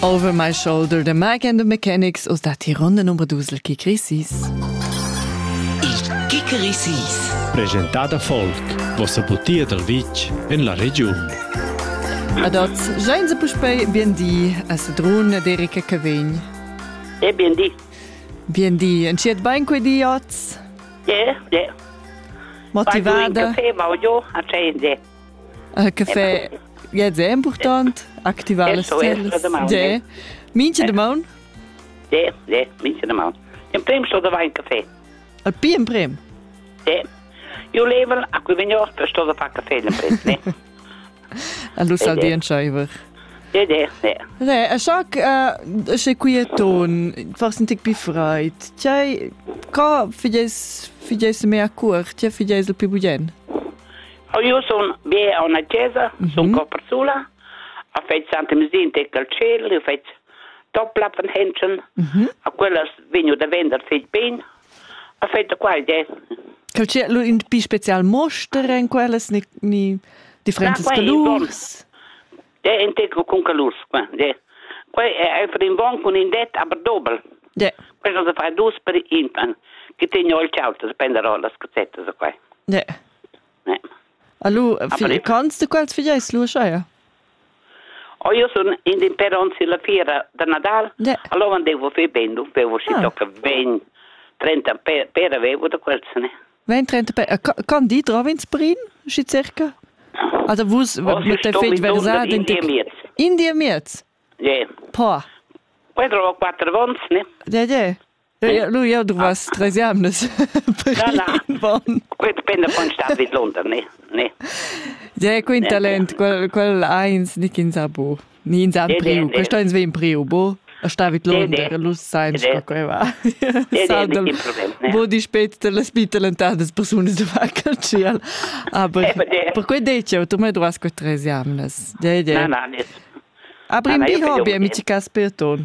Over my shoulder the Mike and the Mechanics aus der Tirande Nummer Dusel Kikrisis. Il Kikrisis. Presentada folk, vossa butia dal vitg en la regiun. Ad oz, jain se puspei biendi a Sedrun d'Erica Cavegn. E biendi. Biendi, entschiet bein quei di oz? Yeah, yeah. Motivada? Vai, ma jo, a Che fe Ja è important activar le stelle. Ja. Mincha de maun? Ja, ja, mincha de maun. In prim sto da wein café. Al pi in prim? Ja. Io level a cui venior per sto da fa café in prim, ne? Allo saldien scheiver. Ja, ja, ja. Ne, a schac sche quieton, fars un tic pi freit. Tiai, ca fides fides mea cur, tia fides il pi bugen? Io sun be a una chesa, mm -hmm. sun co persula, a feit Santa Mesinta e Calcel, io feit Topplappen-Hänschen, mm -hmm. a quellas vegnu da vender feit bene, a feit da qua idea. Calcel, lu in pi special mostra in quellas, ni, ni differentes da, calurs? De integro con calurs, qua, de. Qua è einfach in bon con in det, aber doppel. De. Questo se fa dus per intan, che tegno il cialto, se prende rolas, cazzettes, qua. De. Allora, cons de quels figeis lu schai? Oh, io sono in den peronzi la fiera da Nadal. Yeah. Allora devo fare ben, du devo si ah. tocca ben 30 pere avevo da quels, ne? 20-30 pere. Can di trova in sprin, si circa? Also vus oh, mit der fetg versat in Indien miez. Ja. Yeah. Po. Quattro o quattro vons, ne? Ja, ja. Lu jau druvas treis jamnas. Quei dependa von star vid London, ne? ne? Ja, quei talent, quel, quel eins nick ins a bo. Ni ins an priu. Questo ins ve in priu, bo. A sta vid London, lu sain sco quei va. Bo di spet de las bitalentadas persunas de va cal ciel. Aber per quei detto, tu me druvas quei treis jamnas. Ja, ja. Na, na, ne. Abrim di hobby, amici Casperton.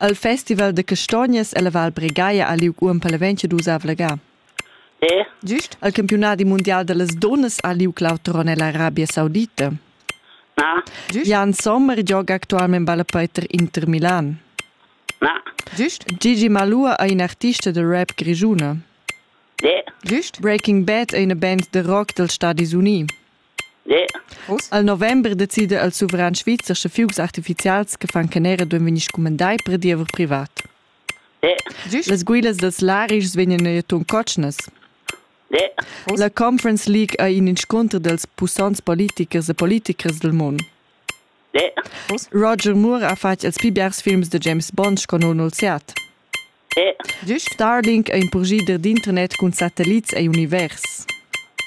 El festival da castognas ella Val Bregaia ha liug uonn paleventscha dusav la ga. Gist al campiunadi mundial dallas dunnas ha liug l'auter onn ella Arabia Saudita. Jan Sommer gioga actualmein ballapei tar Inter Milan. Gist Gigi Malua ei in artista da rap grischuna. Gist Breaking Bad ei ina band da rock dals Stadis Unii. Al november decida il suveran svizzer sche fugs artifizials che fan canera duan vegnir scumandai per diever privat. Las guilas dals larischs vegnan neir ton cotschnas. La Conference League ei in inscunter dels pussants politichers e politichers del mund. Roger Moore ha fatg els pli biars films de James Bond sco non olziat. Starlink è in purgider d'internet cun satellits e univers.